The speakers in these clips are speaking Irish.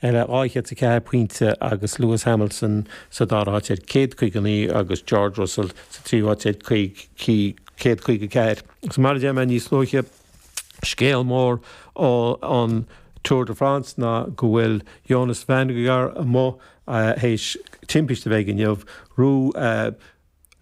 dhá chéad a ceathair pointe agus Lewis Hamilton sa dara háit ar céad caoga naoi agus George Russell sa tríú háit ar céad caoga ceathair. Agus mar a dúirt mé níos luaithe, scéal mór an Tour de France ná go bhfuil Jonas Vingegaard amuigh théis timpiste a bheith inniu.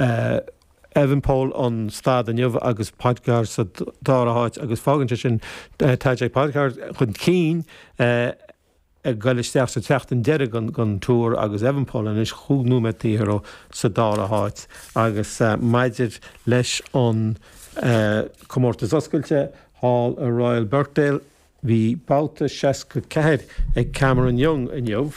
Evenepoel an stáid inniu agus Pogačar sa dara háit agus fágann sé sin Tadej Pogačar chun cinn ag dul isteach sa tseachtain deiridh den Tour agus Evenepoel anois chúig nóiméad taobh thiar sa dara háit agus maidir leis an comórtas oscailte thall i Royal Birkdale Bhí babhta seasca ceathair ag Cameron Young inniu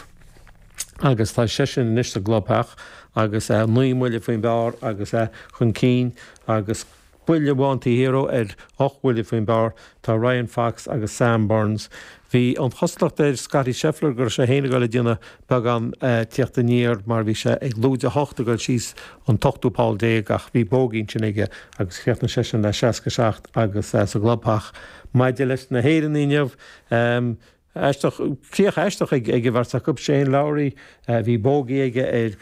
agus tá seisean anois sa gclubtheach agus é naoi mbuille faoin bpar agus é chun cinn agus buille amháin taobh thiar dó ar ocht bhuille faoin bpar tá Ryan Fox agus Sam Burns. Bhí an chosúlacht ar Scottie Scheffler go raibh sé féin ag dul ag déanamh beagán tíocht aniar mar bhí sé ag lúide a hocht ag dul síos an t-ochtú poll déag ach bhí bógaí ansin aige agus chríochnaigh seisean le seasca a seacht agus é sa gclubtheach. Maidir leis na hÉireannaigh inniu, aisteach, críoch aisteach ag an mbeirt acu. Shane Lowry, bhí bógaí aige ar.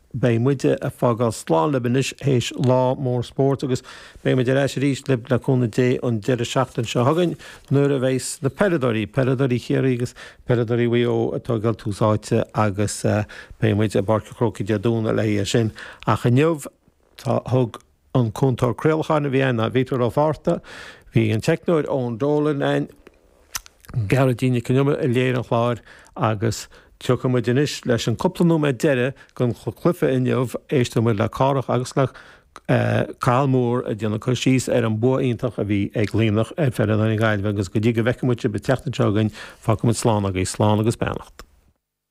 Beidh muid ag fágáil slán libh anois théis lá mór spóirt agus beidh muid ar ais arís libh le cúnamh Dé an deireadh seachtain seo chugainn nuair a bheas na peileadóirí, peileadóirí Chiarraí agus peileadóirí Mhaigh Eo ag fáil tús áite agus beidh muid i bPáirc an Chrócaigh Dé Domhnaigh le haghaidh é sin ach inniu thug. an cúntóir craolacháin a bhí ann ná Peadar Ó Fátharta, bhí an teicneoir Eoin Dolan ann, Gearóidín Nic An Iomaire a léirigh an chlár agus tiocfaidh muid anois leis an cúpla nóiméad deireadh den chluiche inniu, éisteoidh muid le Cárthach agus le Cathal Moore ag déanamh cur síos ar an bua iontach a bhí ag Luimneach ar fhoireann na Gaillimhe agus go dtí go bhfeicfidh muid sibh an tseachtain seo chugainn, fágfaidh muid slán agaibh, slán agus beannacht.